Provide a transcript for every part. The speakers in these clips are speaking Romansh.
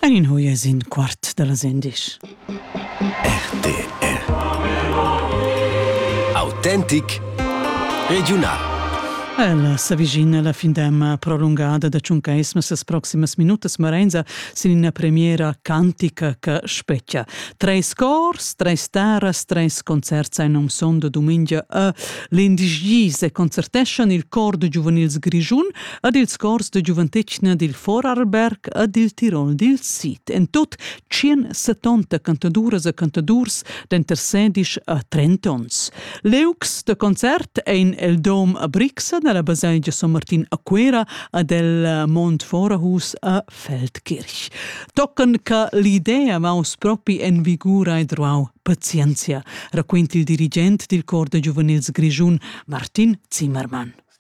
En in hoie sin quart da las endisch. RTR Autentic Regiunal Ella s'avvicina la findemma prolungada da tschuncaisma ses proximas minutas Marenza sin ina premiera cantica che spetgia. Treis cors, treis terras, treis concerts ein um sonda dumengia a l'indigis e concerteschan il cor da giuvenils Grischun ed ils cors de giuventetgna dil Vorarlberg e dil Tirol dil Sid. En tut 170 cantaduras e cantadurs denter 16 e 30 onns. Leux de concert ein el Dom a Brixa nella baselgia San Martin a Cuera ad el Mont Vorahus a Feldkirch. Tocken che l'idea vaus propi en vigura e druau pazienzia, raquint il dirigent dil cor de giuvenils Grischun, Martin Zimmermann.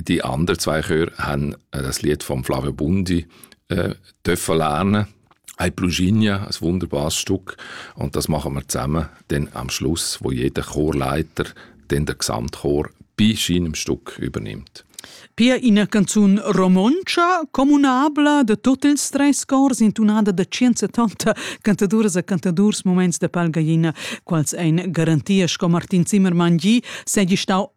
Die anderen zwei Chöre haben äh, das Lied von Flavio Bundi äh, dürfen lernen. Ein Pluginia, ein wunderbares Stück. Und das machen wir zusammen dann am Schluss, wo jeder Chorleiter dann den Gesamtchor bei seinem Stück übernimmt. Pia ina canzun romontscha communabla de tot ils treis cors intunada da 170 cantaduras e cantadurs moments de palgaina, quals ein garantia sco Martin Zimmermann gi, segi stau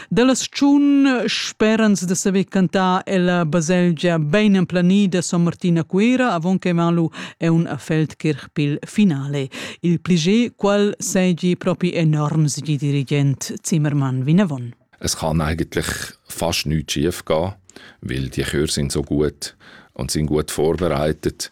Dalla stagiun sperans da saver cantar ella baselgia bein emplanida Son Martin a Cuera avon che van lu ein a Feldkirch pil finale. Il pliger qual seigi propi enorms di dirigent Zimmermann vinavon. Es kann eigentlich fast nichts schief gehen, weil die Chöre sind so gut und sind gut vorbereitet.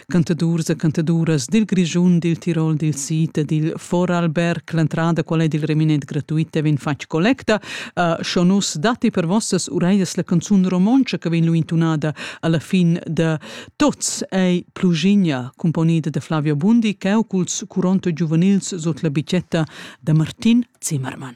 cantadurs e cantaduras dil Grischun, dil Tirol, dil Sid e dil Vorarlberg. L'entrada, qual è il reminent gratuita, vegn fatg collecta. Uh, scho nus datti per vossas ureias la canzun romontscha che vegn lu intunada alla fin de Tots ei Plugigna, componida da Flavio Bundi, che culs Curonto giuvenils sot la bicetta de Martin Zimmermann.